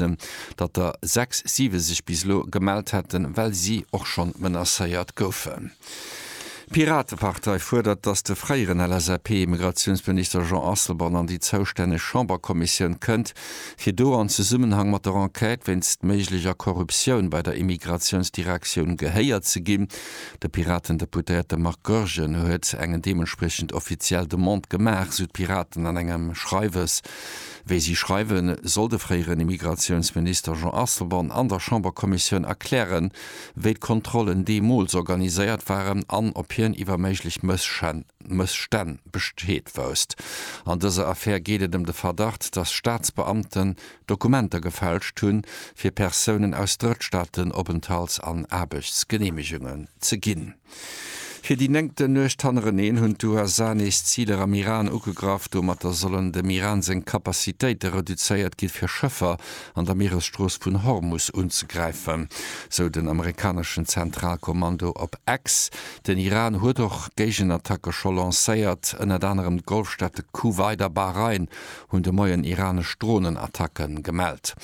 Gewerkschaften, datt der sechs, siwe sech bis elo gemellt hätten, well si och schonn menacéiert goufen. D'Piratepartei fuerdert, datt de fréieren LSAP-Immigratiounsminister Jean Asselborn an déi zoustänneg Chamberkommissioun kënnt, fir do an Zesummenhang mat der Enquête wéinst méiglecher Korruptioun bei der Immigratiounsdirektioun gehéiert ze ginn. De Piratendeputéierte Marc Goergen huet eng deementspriechend offiziell Demande gemaach, sou d'Piraten an engem Schreiwes. Wéi si schreiwen, soll de fréieren Immigratiounsminister Jean Asselborn an der Chamberkommissioun erklären, wéi d'Kontrollen deemools organiséiert waren an ob hien iwwer méiglech Mësstänn Bescheed wousst. An dëser Affär geet et ëm de Verdacht, datt Staatsbeamten Dokumenter gefälscht hunn, fir Persounen aus Drëttstaaten Openthalts an Aarbechtsgeneemegungen ze ginn. Fir déi néngten Nuecht hannereneen hunn d'USA nees Ziler am Iran ugegraff. Domatter sollen dem Iran seng Kapazitéite reduzéiert ginn, fir Schëffer an der Mieresstrooss vun Hormus unzegräifen, sou den amerikaneschen Zentralkommando op X. Den Iran huet och Géigenattacke scho lancéiert. Ënnert anerem d'Golfstaate Kuwait a Bahrain hunn de Moien iranesch Dronenattacke gemellt.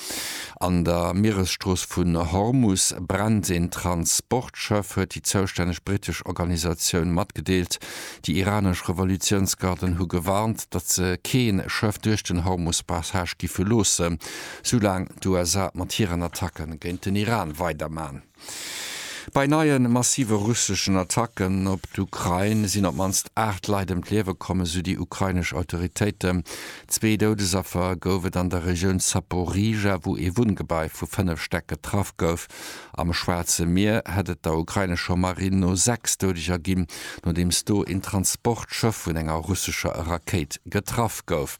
An der Mieresstrooss vun Hormus brennt een Transportschëff, huet déi zoustänneg brittesch Organisatioun matgedeelt. Déi iranesch Revolutiounsgarden hu gewarnt, datt se kee Schëff duerch den Hormus-Passage giffe loossen, soulaang d'USA mat hiren Attacke géint den Iran weiderman. Bei neie massive russeschen Attacken op d'Ukrain sinn op d'mannst 8 Leit ëm d'Liewe komm, esou déi ukrainesch Autoritéiten. Zwee Doudesaffer gouf et an der Regioun Zaporizhzhia, wou ee Wunngebai vu 5 Stäck getraff gouf. Am Schwaarze Mier hätt et der ukrainescher Marinn no 6 Doudeger ginn, nodeems do een Transportschëff vun enger russescher Rakéit getraff gouf.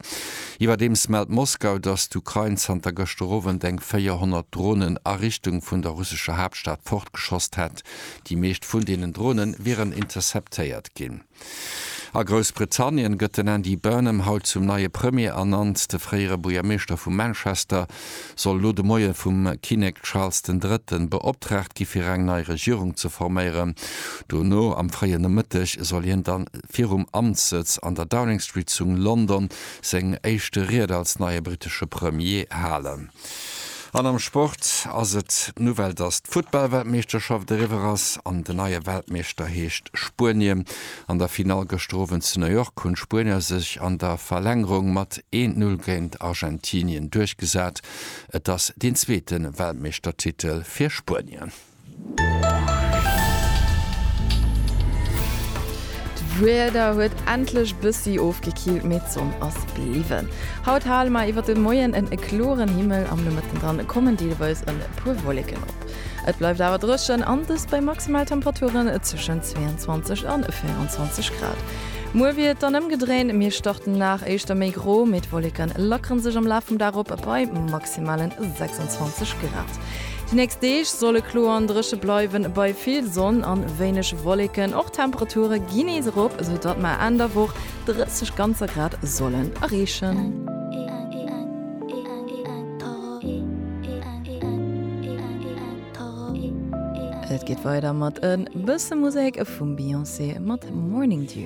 Iwwerdeems mellt Moskau, datt d'Ukrain zanter gëschter Owend eng 400 Dronen a Richtung vun der russescher Haaptstad fortgeschosst hätt. Déi meescht vun deenen Drone wieren interceptéiert ginn. A Groussbritannien gëtt den Andy Burnham haut zum neie Premier ernannt. De fréiere Buergermeeschter vu Manchester soll elo de Moie vum Kinnek Charles den Drëtten beoptraagt gi fir eng nei Regierung ze forméieren. Dono am fréie Nomëtteg soll hien da virum Amtssëtz an der Downing Street zu London seng éischte Ried als neie brittesche Premier halen. An am Sport ass et d'Nouvelle, datt d'Futtball-Weltmeeschterschaft eriwwer ass an den neie Weltmeeschter heescht Spuenien. An der Finall gëschter Owend zu New York hunn d'Spuenier sech an der Verlängerung mat een Null géint Argentinien duerchgesat. Et ass deen zweete Weltmeeschtertitel fir Spuenien. D'Wieder huet endlech bëssi ofgekillt, mee d'Sonn ass bliwwen. Haut hale mer iwwert de Moien en kloren Himmel, am Nomëtten dann kommen deelweis e puer Wolleken op. Et bleift awer dréchen an dëst bei Maximaltemperaturen tëschent 22 an 24 Grad. Muer wier et dann ëmgedréint, mir starten den Dag éischter méi gro, mee d'Wolleke lackere sech am Laf vum Dag op bei maximale 26 Grad. Déi nächst Deeg solle kloer an dréche bleiwen, bei vill Sonn an wéineg Wolleken. Och d'Temperature ginn nees erop, sou datt mer Enn der Woch 30 ganzer Grad sollen erreechen. Et geet weider mat en bësse Musek vum Beyoncé mat Morning Dew.